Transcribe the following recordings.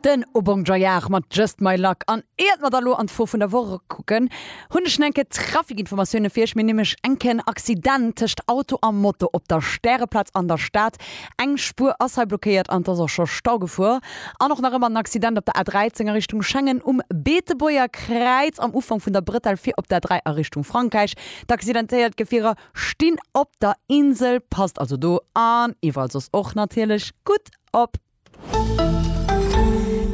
Den O Bon Joyard mat Just My Luck. An iert mer da lo an d'Fro vun der Woch kucken, hunn ech nach eng Kéier Trafikinformatioune fir iech. Mir hunn nämlech eng Kéier en Accident tëscht Auto a Moto op der Stäreplaz an der Stad. Eng Spuer ass hei blockéiert an et ass och scho Stau gefuer. An och nach ëmmer en Accident op der A13 a Richtung Schengen um Beetebuerger Kräiz am Ufank vun der Bretelle fir op der A3 a Richtung Frankräich. D'accidentéiert Gefierer stinn op der Insel. Passt also do an iwwerall soss och natierlech gutt op.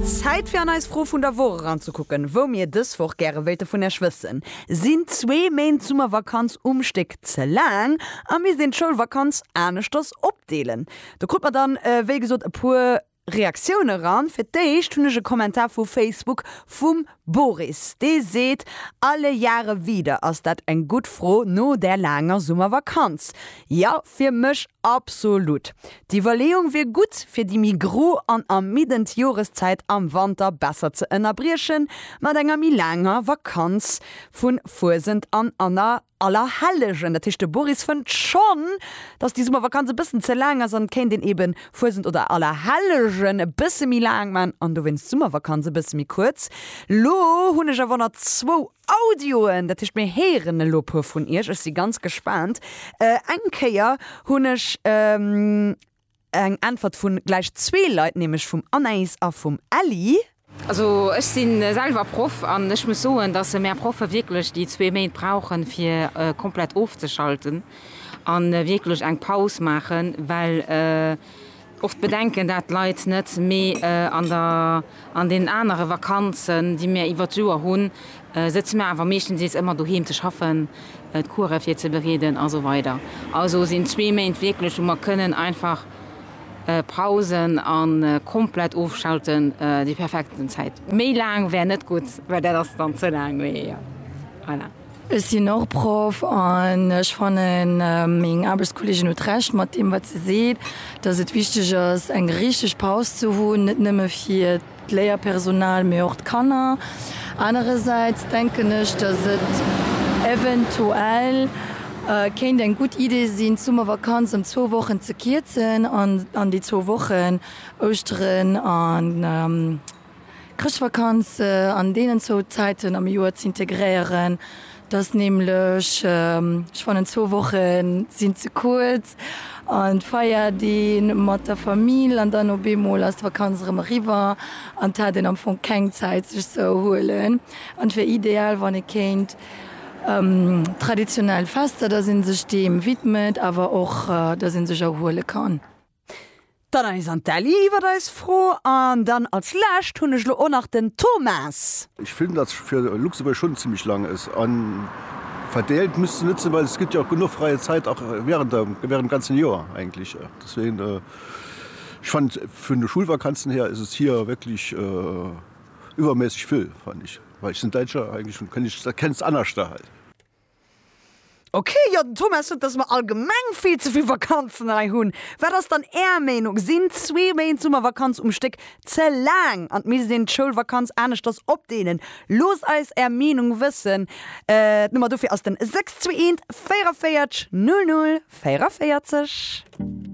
Zäit fir an eis Fro vun der Woch eran ze kucken, wou mir dës Woch gäre wéilte vun Iech wëssen. Sinn zwee Méint Summervakanz um Stéck ze laang a misst een d'Schoulvakanz aneschters opdeelen? Do krut mer dann, wéi gesot, e puer Reaktiounen eran. Fir d'éischt hunn ech e Kommentar vu Facebook vum Boris, dee seet, Alle Jahre wieder, ass dat eng gutt Fro no där laanger Summervakanz? Jo, fir mech absolut. D'Iwwerleeung wier gutt, fir déi méi gro an ermiddend Joreszäit am Wanter besser ze ënnerbriechen mat enger méi laanger Vakanz vu Fuesent an Anna Allerhellegen, dat heescht de Boris fënnt schonn, dass déi Summervakanz e bëssen ze laang ass an et kéint een eben Fuesent oder Allerhellegen e bësse méi laang man an dowéinst d'Summervakanz e bësse méi kuerz. Lo hunn ech awer nach zwou Audioen, dat heescht mir héieren elo e puer vun iech, ech si ganz gespaant. Eng Kéier hunn ech. Eng Äntwert vun gläich zwee Leit, nämlech vum Anaïs a vum Elly. Also ech si selwer Proff an ech muss soen, dass mär Proffe wierklech déi zwee Méint brauchen, fir komplett ofzeschalten a wierklech eng Paus maachen, well oft bedenken dat d'Leit net, mee an der. An deenen anere Vakanzen, déi mir iwwert d'Joer hunn, sëtze mir awer meeschtendeels ëmmer doheem ze schaffen, d'Course virzebereeden a sou weider. Also sinn zwee Méint wierklech, wou mer kënnen einfach pausen a komplett ofschalten, déi perfekt Zäit. Méi laang wär net gutt, well dat ass dann ze laang. Mee voilà. Ech sinn och Proff an ech fannen, meng Aarbechtskolleegin huet Recht mat deem, wat se seet, dass et wichteg ass, eng richteg Paus ze hunn, net nëmme fir d'Léierpersonal, mee och d'Kanner. Anerersäits denken ech, dass et eventuell kéint eng gutt Idee sinn, d'Summervakanz ëm zwou Wochen ze kierzen an an déi zwou Wochen, Ouschteren an Chrëschtvakanz an deenen zwou Zäiten am Joer z'integréieren, dat ass nämlech, ech fannen zwou Woche sinn ze kuerz, an d'Feierdeeg mat der Famill an dann op eemol ass d'Vakanz erëm eriwwer an et hat een am Fong keng Zäit sech ze erhuelen. An et wär ideal wann ee kéint traditionell Fester, datt ee sech deem widmet awer och datt ee sech erhuele kann. D'Anaïs an d'Elly iwwert eis Fro. An dann als lescht hunn ech lo och nach den Thomas. Ech finn dat fir Luxemburg schon zimmlech lang es an verdeelt misst se net sinn well es gëtt jo och genuch freie Zäit och während der während dem ganzen Joer eigentlech deswegen ech fannen vun de Schulvakanzen her es es hier wierklech iwwermässeg vill fannen ech well ech sinn Däitscher eigentlech hunn kënn ech dat kenns anerschter hei. Ok, jo den Thomas sot dass mer allgemeng vill ze vill Vakanzen hei hunn. Wat ass dann är Meenung, sinn zwee Méint Summervakanz um Stéck ze laang an misst een d'Schoulvakanz aneschters opdeelen? Loosst eis är Meenung wëssen, d'Nummer dofir ass den 621 44 00 44.